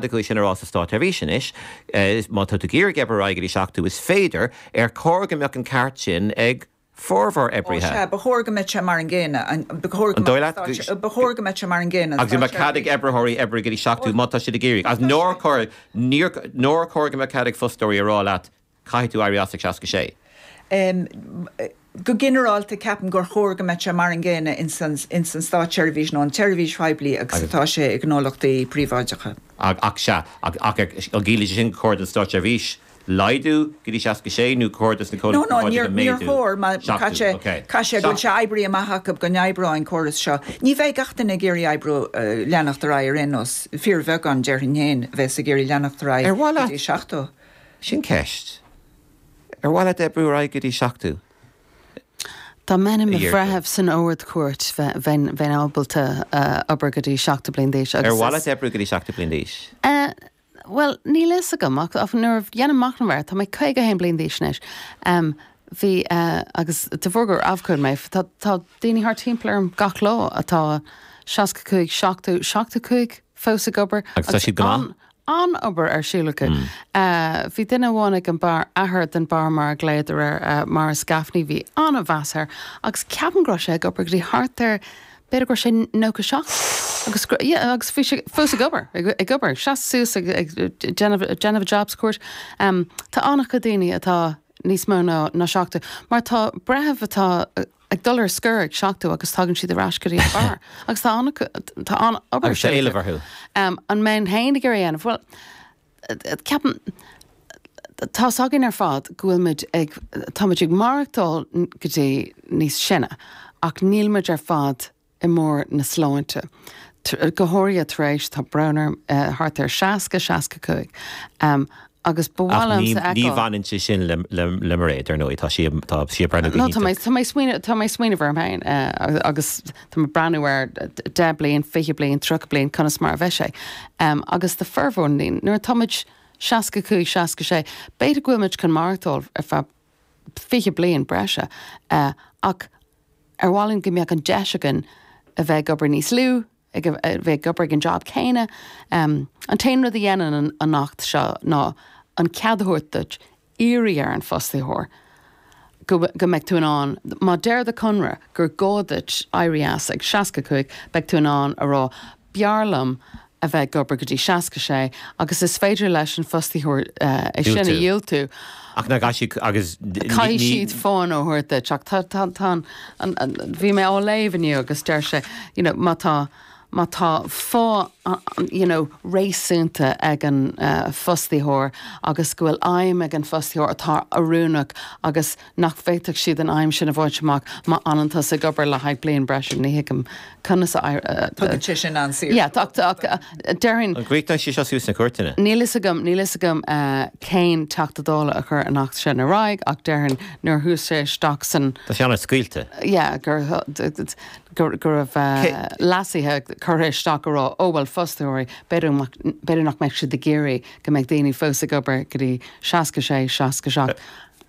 Tá sé sin a rá sa státseirbhís anois, má tá tú ag iarraidh oibriú ar aghaidh go dtí 70, is féidir, ar chóir go mbeadh an ceart sin ag formhór oibrithe? Sea, ba chóir go mbeadh sé mar an gcéanna. An dóigh leat go, ba chóir go mbeadh sé mar an gcéanna an státseirbhís. Agus an mbeadh cead ag oibritheoirí oibre go dtí 70 má tá siad á iarraidh? Agus nár chóir, níor, nár chóir go mbeadh cead ag fostóirí a rá leat Caithfidh tú éirí as ag 66. em. go ginearálta ceapaim gur chóir go mbeadh sé mar an gcéanna ins an státseirbhís nó an tseirbhís phoiblí agus atá sé i ngnólachtaí príobháideacha. Ach, ach, sea. Ach, ach an gciallaíonn sé sin gur chóir don státseirbhís laghdú go dtí 66 nó gur chóir dos na comhlachtaí No, no, níor, príobháideacha níor méadú? chóir mar chaith Seachtú, sé, ok. chaith sé, go bhfuil Seacht. sé oibrithe amach acu go n-oibreoidh an córas seo. Ní bheidh gach duine ag iarraidh oibriú, leanacht ar aghaidh ar aon nós, fíorbheagán, déarfainn féin, a bheas ag iarraidh leanacht ar aghaidh Ar mhaith go leat? dtí 70. Sin ceist. Ar mhaith leat oibriú ar aghaidh go dtí 70? Dá mbeinn i mo bhreitheamh san Ard-Chúirt, bheinn ábalta obair go dtí 70 bliain d'aois. Ar mhaith leat oibriú go dtí 70 bliain d'aois? Bhuel, níl fhios agam ach nuair a dhéanaim machnamh air, tá mé 51 bliain d'aois anois, bhí agus de bharr gur abhcóide mé, tá daoine thart timpeall orm gach lá atá 65, 70, 75 fós ag obair. Agus tá siad go maith? An-obair ar siúl acu. Bhí duine amháin ag an mBarra, athair den Bharra mar a ghlaodar air, Maurice Gaffney, bhí an-mheas air agus ceapaim go raibh sé ag obair go dtí thart ar, b'fhéidir go raibh sé nócha seacht agus, yeah, agus bhí sé fós ag obair, ag obair, ag seasamh suas ag déanamh a job sa chúirt. Tá an-chuid daoine atá níos mó ná seachtó mar tá breithiúna atá, ag dul ar scor ag seachtó agus tagann siad ar ais go dtí an mBarra agus tá an-, tá an-obair. Agus tá éileamh orthu. Ehm, an mbeinn féin ag iarraidh é a dhéanamh? Bhuel, eh, ceapaim, tá's againn ar fad go bhfuil muid ag, tá muid ag maireachtáil go dtí níos sine ach níl muid ar fad, i mbarr na sláinte. Go háirithe tar éis, tá brón orm, thart ar 60, 65 agus ba mhaith liomsa a fheiceáil. Ach ní bhaineann sé sin le Mairéad, ar ndóigh, tá sí ag breathnú go hiontach. Nó tá mé ag smaoineamh orm féin agus tá mé ag breathnú ar 10 bliain, 20 bliain, 30 bliain, conas mar a bheidh sé. Agus do formhór na ndaoine, nuair atá muid 65, 66, b'fhéidir go bhfuil muid chun maireachtáil ar feadh 20 bliain breise ach, Ar mhaith linn go mbeadh an deis againn a bheith ag obair níos lú, ag, a bheith ag obair ag an jab céanna? An t-aon rud a dhéanann an, an Acht seo ná an cead a thabhairt duit iarraidh ar an fostaitheoir go, go mbeidh tú in ann, má deir do conradh gur gá duit éirí as ag seasca cúig, beidh tú in ann a rá, b'fhearr liom a bheith ag obair go dtí 66 agus is féidir leis an fostaitheoir é sin a dhiúltú. Ach caithfidh siad fáth a thabhairt duit ach tá tá tá an an bhí mé á léamh inniu agus deir sé you know má tá má tá fáth you know réasúnta ag an fostaitheoir agus go bhfuil aidhm ag an fostaitheoir atá oiriúnach agus nach bhféadfadh siad an aidhm sin a bhaint amach má fhanann tusa ag obair le haghaidh bliain breise, ní thuigim conas a. thugann sé sin an-saoirse dóibh. Ach déarfainn. An gcríochnaíonn sí seo suas sna cúirteanna? Níl fhios agam, níl fhios agam cén Teachta Dála a chuir an Acht sin ar aghaidh ach déarfainn nuair a chuaigh sé isteach san. Tá sé an-fhad scaoilte. Yeah, go raibh leasuithe curtha isteach a rá, oh bhuel fostóirí, b'fhéidir nach mbeadh siad ag iarraidh go mbeadh daoine fós ag obair go dtí seasca sé, seasca seacht.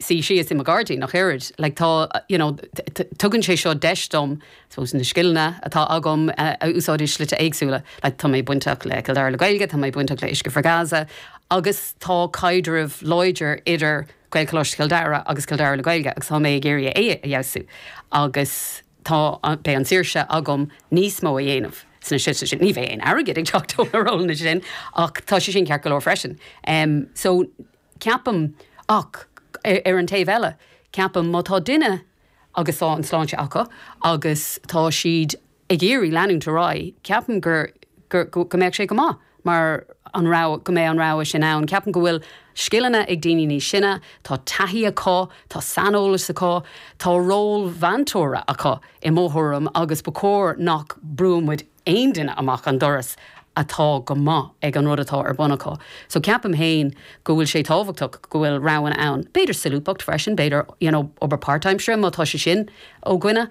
suí síos i mo ghairdín ach oiread. Like tá, you know, tugann sé seo deis dom, I suppose, na scileanna atá agam a úsáid i slite éagsúla. Like tá mé bainteach le Cill Dara le Gaeilge, tá mé bainteach le Uisce for Gaza agus tá caidreamh láidir idir Gaelcholáiste Chill Dara agus Cill Dara le Gaeilge agus tá mé ag iarraidh é a fheabhsú agus tá, beidh an tsaoirse agam níos mó a dhéanamh sna slite sin. Ní bheidh aon airgead ag teacht ó na rólanna sin ach tá sé sin ceart go leor freisin. Um so. Ceapaim, ach ar an taobh eile, ceapaim má tá duine agus tá an sláinte acu agus tá siad ag iarraidh leanúint ar aghaidh, ceapaim gur, gur, go mbeadh sé go maith mar an rogha, go mbeidh an rogha sin ann. Ceapaim go bhfuil scileanna ag daoine níos sine, tá taithí acu, tá saineolas acu, tá ról mheantóra acu i mo thuairim agus ba chóir nach mbrúnn muid, aon duine amach an doras atá go maith ag an rud atá ar bun acu. So ceapaim féin go bhfuil sé tábhachtach go bhfuil roghanna ann. B'fhéidir solúbthacht freisin, b'fhéidir, you know, obair part-time, sure, má tá sé sin ó dhuine.